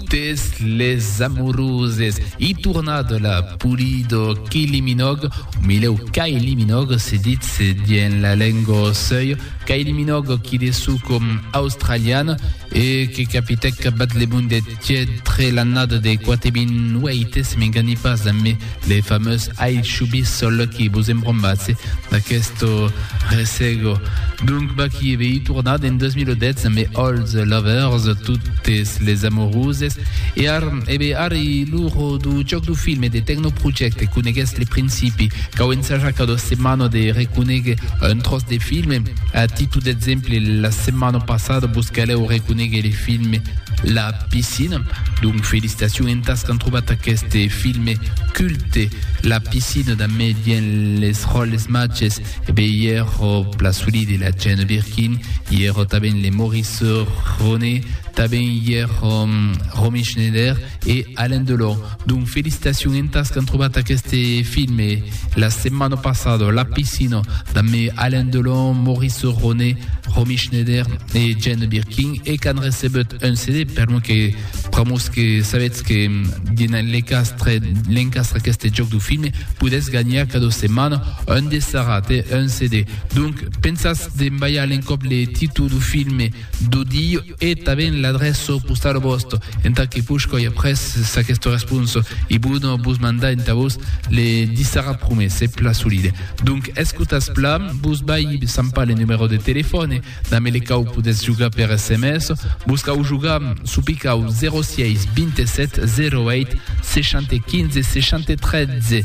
Totes les amoroses. I tornat la Pulido Kiliminòg, o milèu Kailiminòg se ditz dien la lengo sèu, Kailiminòg qui de sou com australian e que capitèc bat le monde tièd tre l'annada de 4800 se m'enganhi pas, Les fameux ai chubis sol aquí vos embrombatse d'aquesto resego. Donc Baki vei tornat en 2010 amb Old Lovers, totes les amoroses, e ar, e bé ar i l'uro du joc du film e de Techno Project conegues le principi, cau ensajar cada setmana de reconegue un tros de film, a titu d'exemple la setmana passada vos caleu reconegue le film La Piscina. Donc felicitacion entas qu'an trobat aqueste filme culte La Piscina damé dien les ròles matges e be i ero la Sully de la Jane Birkin i ero taben le Maurice Ronet taben i ero Romy Schneider e Alain Delon. Donc felicitacion entas qu'an trobat aqueste filme la setmana passada, La Piscina, damb Alain Delon, Maurice Ronet, Romy Schneider e Jane Birkin e qu'an recebut un CD per lo que pr'amors que sabetz que dins l'encastre l'encastre aqueste jòc du filme podètz ganhar cada setmana un dessarat e un CD. Donc pensatz d'embalhar l'encòp le títol du filme d'odi E tanben l'adrèço postau vòsto. Entà que push coi après s'aquesto responso, i bono vos mandar entà vos le dissara prumès, se pla solide. Donc escotatz pla, vos vai sampar le numèro de telefòne, damb ele cau podètz jogar per sms, vos cau jogar çò picau 06 27 08 60 15 60 13.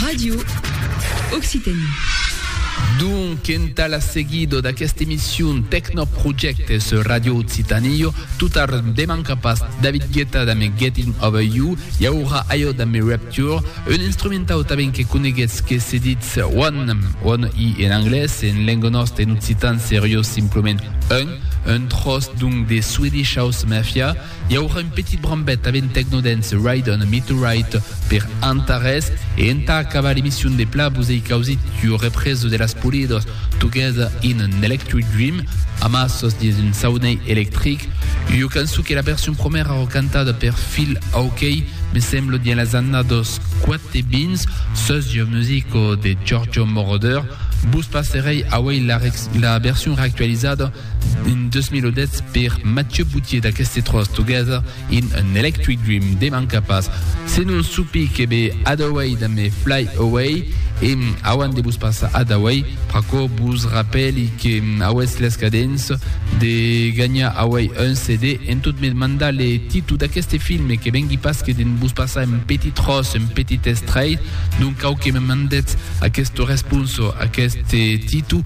Radio Occitanie. Donc, entà la seguido d'aquesta emission Tecnoprojecte sur Radio Occitanie, tot ar deman capas David Guetta damb Getting Over You, i aurà aio damb Rapture, un instrumentau tanben que coneguetz que se ditz One, One i en anglés, en lenga nòsta en occitan serió simplement Un, un tròç donc de Swedish House Mafia, I aurà un petit brambet a ben Tecnodance Ride on a Meteorite per Antares e entà acabar l'emission de pla vos ei causit ua represa de las Polidos Together in an Electric Dream amassos dins un saunei electric, ua cançon que la version promèra ro cantada per Phil Oakey me semblo dins las annados quatebins sus ua musico de Giorgio Moroder, vos passerei auei la version reactualizada. En 2010 per Mathieu Boutier d'aqueste tròç Together in an Electric Dream de manca pas se non supi que be Hadaway damb Fly Away e auant de vos passar Hadaway pr'aquò vos rapèli que auetz l'escadens de ganhar auei un CD en tot me mandar le titu d'aqueste filme que vengui pas que de'n vos passar un petit tròç un petit estrait donc cau que me mandetz aquesta responsa a aqueste titu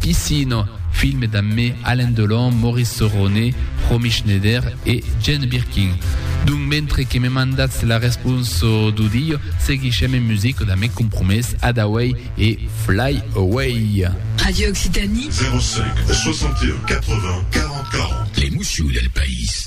Piscina, film damb me Alain Delon, Maurice Sorone, Romy Schneider e Jane Birkin. Donc mentre que me mandatz la responsa d'audiu, seguishem en musica damb me compromés Adaway e Fly Away. Radio Occitanie. 05 61 80 40 40. L'emoció del país.